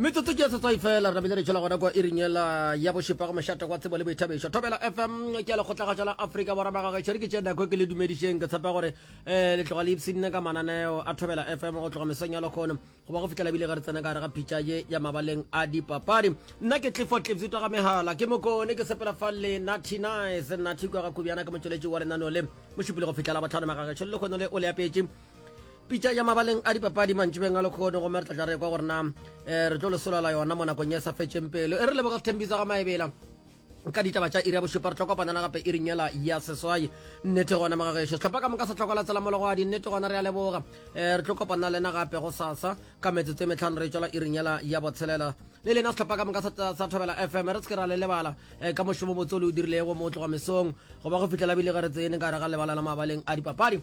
metsotso ke setswai fela re bile re tšhela gona kwa iringela ya bošepa go mošate kwa tsebo le boithabišo thobela fm ke le kgotlagatša la afrika borwa magagešo re ke tše nako ke le dumedišeng ke tshepa gore um le tloga le ipshinne ka mananeo a thobela fm go tloga mesong ya lekgono goba go fitlhela bile ge re tsena ka gare ga phitša ye ya mabaleng a dipapadi nna ke tlifo tlipsitwa ga megala ke mokone ke sepela fa le natty nice natty kwa ga kobjana ke motšweletši wa lenaneo le mošupile go fitlhela botlhano magagešo le lekgono le o le apetše Pitša ya mabaleng a dipapadi mantšibeng a lekgono gomme re tla tla re kwa gore na um re tlo lesolela yona mo nakong e sa fetšeng pelo e re leboga sethembisa ga maebela ka ditaba tša iri ya bošupa re tlo kopanela gape iring yela ya seswai nnete gona magagešo setlhopha ka moka sa tlhokola tsela mologwadi nnete gona re a leboga um eh, re tlo kopana lena gape go sasa ka metsotso e metlhano re tswela iring yela ya botshelela le lena setlhopha ka moka sa thobela fm re seke ra le lebala um eh, ka mošomo motse o le o dirilego mo o tloga mesong goba go fitlhela bile ge re tsene ka re ga lebala la mabaleng a dipapadi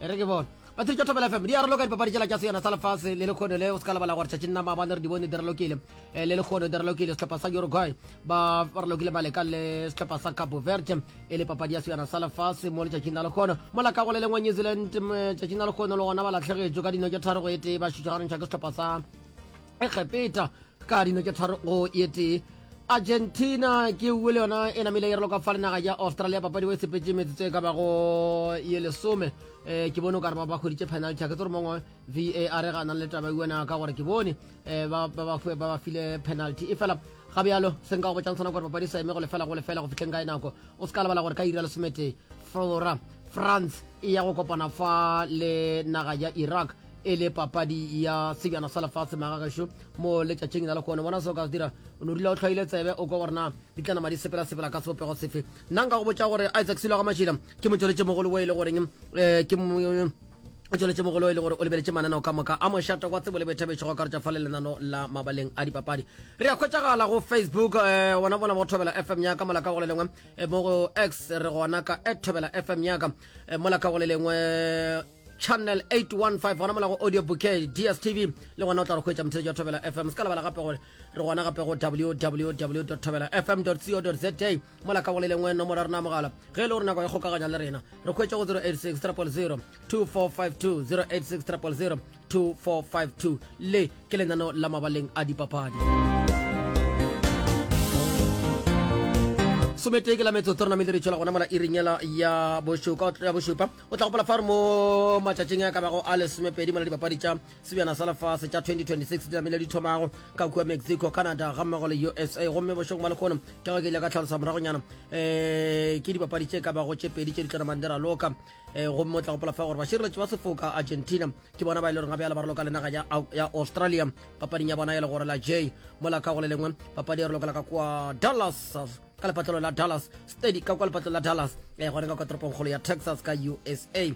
e re ke bone batiri tša thobela fm di arolo ka dipapadi tšela tša seyona sa lefase le lekgono le o se ka lebala gore tšatšing nama bane re di bone direlokile eh, le lekgono direlokile sehlopha sa uruguay ba relokile maleka le sehlopha sa cabo verde e le papadi ya seyona sa lefase mo letšatšing la lekgono mola ka go le lengwe new zealand tšatšing la lekgono le gona ba latlhegetšo ka dino tše tharo go e tee ba šutšagarentšha ke sehlopha sa egepeta ka dino tše tharo go ye tee argentina ke uwe le yona e namile e relo ka fa le naga ya australia papadi o e sepetse metsotso e ka bago ye lesome um ke bone o ka re ba ba hweditše penalty a ke tse gore mongwe var e ganang le taba uena ka gore ke bone um ba ba file penalty e fela ga bjalo se nka go botšang sona gore papadi sa eme go lefela go lefela go fitlheng ka e nako o se ka lebala gore ka ira lesometee flora france e ya go kopana fa le naga ya iraq e le papadi ya sejana sa lefatshe magagešo mo letšatšing na le kone bona se o ka se dira o no dula o tlhwaile tsebe o kwa gore na di tla nama di sepela-sepela ka sebopego sefe nna nka go botša gore isaac selo ga mašila ke motsweletše mogolo o e le goreng um ke o tsweletše mogolo e le gore o lebeletše mananeo ka moka a mošata kwa tsebo le boithabetšo go karetša fa le lenano la mabaleng a dipapadi re ya kgwetšagala go facebook um gona bona bo thobela fm yaka molaka go le lengwe eh, mo go x re gona ka at thobela fm yaka eh, molaka go le lengwe channel 815 gona mola go audio bouquet dstv le gona o tla re hwetša mothetši ya thobela fm se ka lebala gape gore re gona gape go www thobela fm co za mola ka gole lengwe nomoro ya rena mogala ge e le gore nako ya kgokaganya le rena re hwetša go 086 000 2452 086 000 2452 le ke lenano la mabaleng a dipapadi sometee ke la metsotso re namele re tšwela gona mola iringela ya bošupa o tla gopola fa re mo matšatšing a ka bago a lesomepedi mola dipapadi tša sebjana sa lefase tša 2026 di namile di thomago ka kua mexico canada ga mmogo le usa gomme bošong ba lekgono ke go ke ile ka tlhalosa moragonyana um eh, ke dipapadi tše ka bago tše pedi tše di tlo namang di raloka um eh, gomme o tla gopola fa gore bašireletši ba sefoka argentina ke bona ba e le goreng ga bjale ba raloka le naga ya australia papading ya bona e le gore la j mola ka go le lengwe papadi e raloka la ka kua dallas ka lepatlelo la dallas steady ka kwa lepatlelo la dallas e eh, gone ka kwa toropongkgolo ya texas ka usa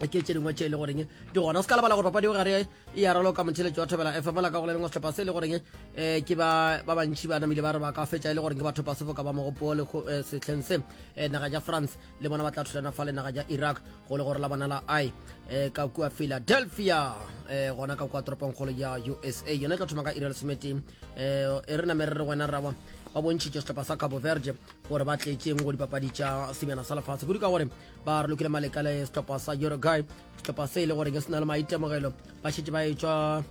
ke tše dingwe tše e le goreng di gona o se ka lebala gore papadi o gare e ya raloka motheletso wa thobela fm la ka go le lengwe setlhopha se e le goreng um ke ba bantšhi ba namile ba re ba ka fetša e le goreng ke batho ba sefoka ba mogopo le eh, setlheng se eh, naga ja france le bona ba tla thulana fa lenaga ja iraq go le gore la bona la i eh, ka kua philadelphia eh, gona ka kua toropong kgolo ya usa yone e tla thoma ka irel semete eh, e re namere re wena raba ba bontšhitše setlhopha sa cabo verde gore ba tletšeng go dipapadi tša semjana sa lefatshe kudu ka gore ba re lokile maleka le setlhopha sa uruguay setlhopha se e le goreng se na le maitemogelo ba šetse ba e tšwa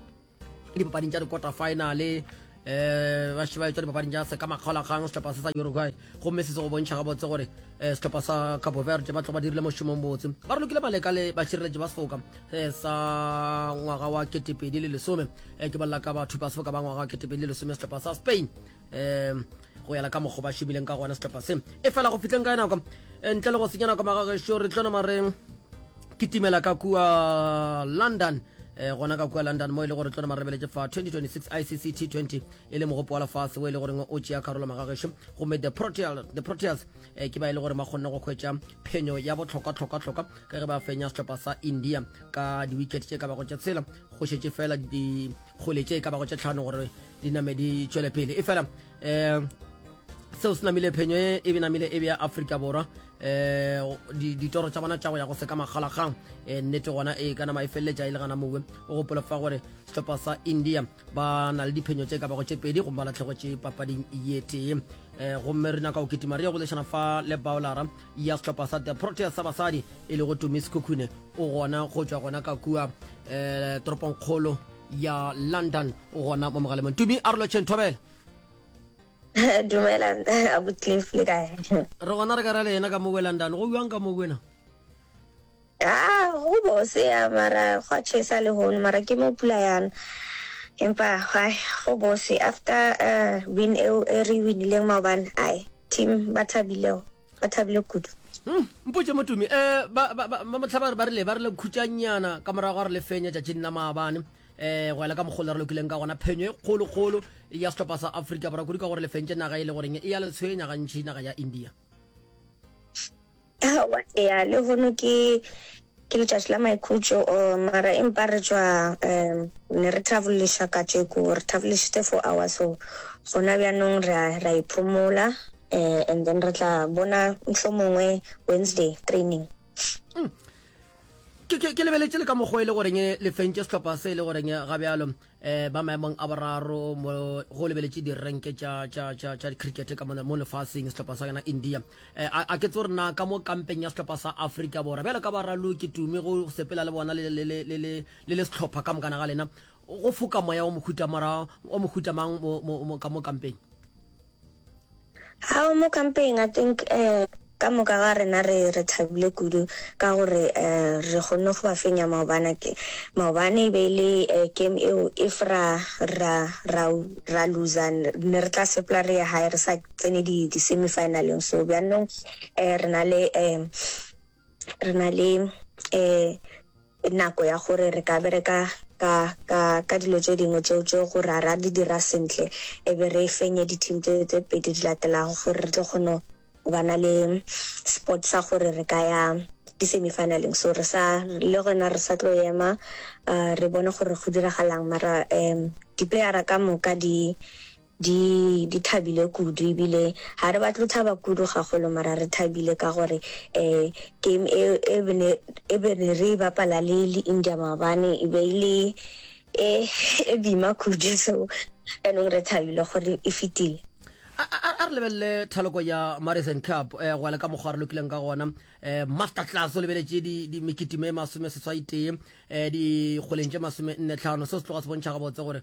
dipapading tša di-quarter finale um ba šeba etswa dipapading tša seka makgaolakgang setlhopha se sa uruguay gomme se se go bontšha gabotse gore um setlhopha sa cabo verde ba tlo ba dirile mošomong botse ba re lokile maleka le bašireletši ba sefoka um sa ngwaga wa ketepedi le lesome um ke bolela ka bathupa sefoka ba ngwaga wa ketepedi le lesome setlhopha sa spain um go yala ka mokgo ba šomileng ka gona setlhopha se e fela go fitleng ka nako e ntle le go senya nako magagešo re tlo nama re kitimela ka kua london um gona ka kua london mo e le gore tlo nama re beletse fa 2026 icc t20 e le mogopo wa lefase o e le goreng o tšea karolo magagešo gomme the proteas um ke ba e le gore ba kgonne go kgwetša phenyo ya botlhokwa-tlhokwa-tlhokwa ka ge ba fenya setlhopha sa india ka di-wicket tše ka bago tša tshela go šetše fela di kgole tše e ka bago tše tlhano gore di name di tšwele pele e fela um seo se namile phenyo e e benamile e bea aforika borwa um ditoro tša bona tša go ya go seka makgalakgang um nnete gona e ka nama e feleletša e le gana mowe o gopola fa gore sehlopha sa india ba na le diphenyo tše ka bago tše pedi gomme ba latlhegotše papading ye tee um gomme re nyaka go kitima re ye go lešana fa le baolara ya sehlopha sa the proteas sa basadi e lego tumi sekhukhune o gona go tšwa gona ka kua um eh, toropongkgolo ya london o gona mo mogalemong tumi a re lotšheng thobela dumela abucliff le kae re gona re ka ra le yena ka mo london go bjang ka mo kwena Haa go bose ya mara gwa chesa le hono mara ke mo pula yana empa hai go bose after uh, win eo e re winileng maobane ai team ba thabilego ba thabile kudu hmm, mpotse motumi um eh, bamotlha ba re ba rile ba rile khutšanyana ka morago ga re le fenya tšatšing la maabane um eh, go ela ka mogolo re lokileng ka gona phenyo e kgolokgolo ya setlhopha sa aforika borwa kudu ka gore le fentše naga e le goreng e ya le tshwenya gantšhi naga ya india Aowa, eya, lehono ke, ke letšatši la maikhutšo, oh, mara empa re tšwa, um, ne re traveliša katšeko, re travelišitše four hours, so gona bjanong re a, re a iphomola, um, and then re tla bona mohlomongwe Wednesday training. Ke, ke, ke lebeletše le ka mokgwa e le goreng le fentše sehlopha se e le goreng ga bjalo. um ba maemong a boraro mo go lebeletše direnke tša dicricket ka mo lefaseng sehlopha sa yona india um a ke tse gore na ka mo kampeng ya sehlopha sa africa borwa bjale ka baralo ke tume go sepela le bona le le sehlopha ka mokana ga lena go foka moya o mohutamang ka mo kampeng Ao mo kampeng I think eh ka moka ga rena re re thabile kudu ka gore eh re kgonne go ba fenya maobana ke maobane e be e le eh, game eo if ra ra ra ra loser ne re tla sepela re ya hae re sa tsene di di semi finaleng so bjanong eh re na le eh re na le um nako ya gore re ka bereka ka ka ka dilo tše dingwe tšeo tšeo gore a ra di dira sentle e be re fenye di-team tse tse pedi di latelago gore re tlo kgone go ba na le sport sa gore re ka ya di-semifinaleng so re sa le gona re sa tlo ema um re bone gore go diragalang mara um diplayera ka moka di Di, di thabile kudu, ebile ga re batle go thaba kudu gagolo, mara re thabile ka gore um game e, e be ne, e be ne re e bapala le, le India maabane, e be e le e, e bima kudu. So jaanong re thabile gore e fetile. A, a, a re lebelele thaloko ya Marisan Cup um go ya le ka mokgwa re lokileng ka gona. um Master Class o lebeletše di, di mekitime e masome seswai tee um dikgweleng tše masome nne tlhano. Seo se tloga se bontšha gabotse gore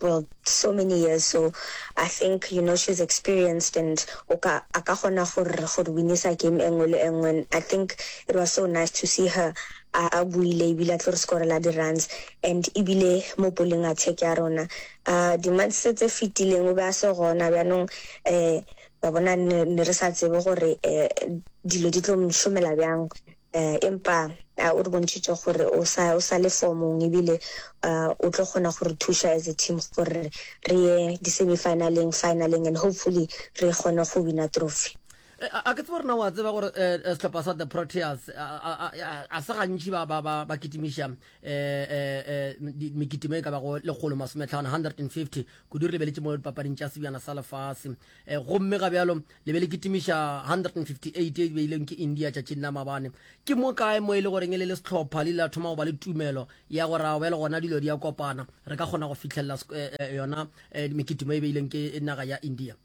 well so many years so I think you know she's experienced and o ka a ka kgona go re go re winisa game e nngwe le e nngwe and I think it was so nice to see her a a buile ebile a tlo re skorela di-runs and ebile mo poleng attack ya rona um di-months tse fetileng o be a se gona bjanong um wa bona ne ne re sa tsebe gore um dilo di tlo mo šomela bjang Empa a o re bontšhitše gore o sa, o sa le fomong ebile a o tlo kgona go re thuša as a team gore re ye di-semi-finaleng, finaleng and hopefully re kgone go wina trophy. A, a ke tsebe gore na o a tseba gore eh, eh, sehlopha sa the Proteas a, a, a, a, a se gantši ba, ba, ba, ba kitimiša eh, eh, eh, di- mekitimo e ka bago lekgolo masometlhano 150 kudu re lebeletše mo dipapading tša sebjana sa lefase Eh, gomme ga bjalo le be le kitimiša 158 e beileng ke india tšatšing la mabane ke mo kae mo e le goreng e le le setlhopha le ile la thoma go ba le tumelo ya gore a bjale gona dilo di ya kopana re ka kgona go fitlhelela eh, eh, yona mekitimo e beileng ke naga ya india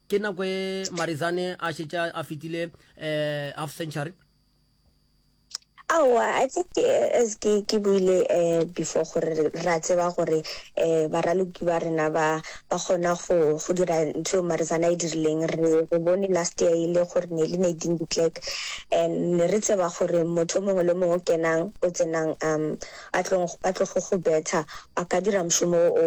ke nako e marizane a šetša a fetile half century Aowa, I think as ke ke buile um before gore ra tseba gore um baraloki ba rena ba ba kgona go go dira ntho eo Marizana e dirileng. Re re bone last year e le gore ne le Nadine de Klerk and ne re tseba gore motho o mongwe le mongwe o kenang o tsenang um a tlo a tlo go go betha a ka dira mošomo o.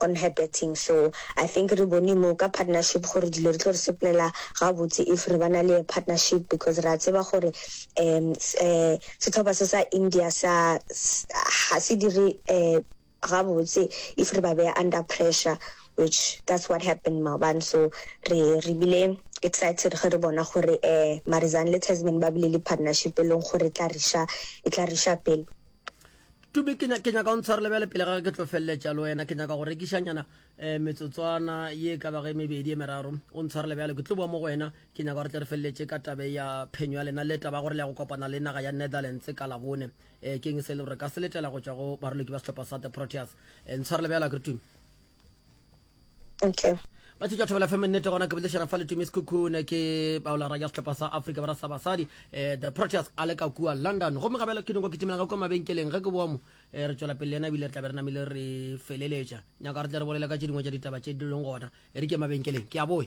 on her betting so I think re bone mo ka partnership gore dilo re tlo re seplela gabotse if re bana le a partnership because ra tseba gore um setlhopha se sa India sa ga se dire um gabotse if re ba beya under pressure which that's what happened maobane so re re bile excited ge re bona gore um Marizanne le Tasman ba bile le partnership e leng gore e tla re sha e tla re sha pele. tube ke nyaka o ntshwarele bjale pele ga ke tlo feleletša le wena ke nyaka go rekišanyana um metsotswana ye ka bage mebedi e meraro o ntshwarele bjale ke tlo bua mo go wena ke nyaka gore tle re feleletše ka tabe ya phenyo ya lena le taba gore le ya go kopana le naga ya netherlands ka labone um eh, keng se le gore ka seletela go tšwa go baroloki ba setlhopha sa the proteas um eh, ntshwarele bjale a keretume okay ba tšetša thobela fm nnete gona ke bolešana fa letumi sekhukhune ke baolara ya setlhopha sa africa bara sa basadi um eh, the proteus a le ka kua london gomme gabela ke dinko ke timela ka kua mabenkeleng ge ke boa mo um eh, re tšwela pele le ena ebile re tla be re namile re feleletša nyaka re tle re bolela ka tše dingwe tša ditaba tše di leng gona e re ke mabenkeleng ke a boe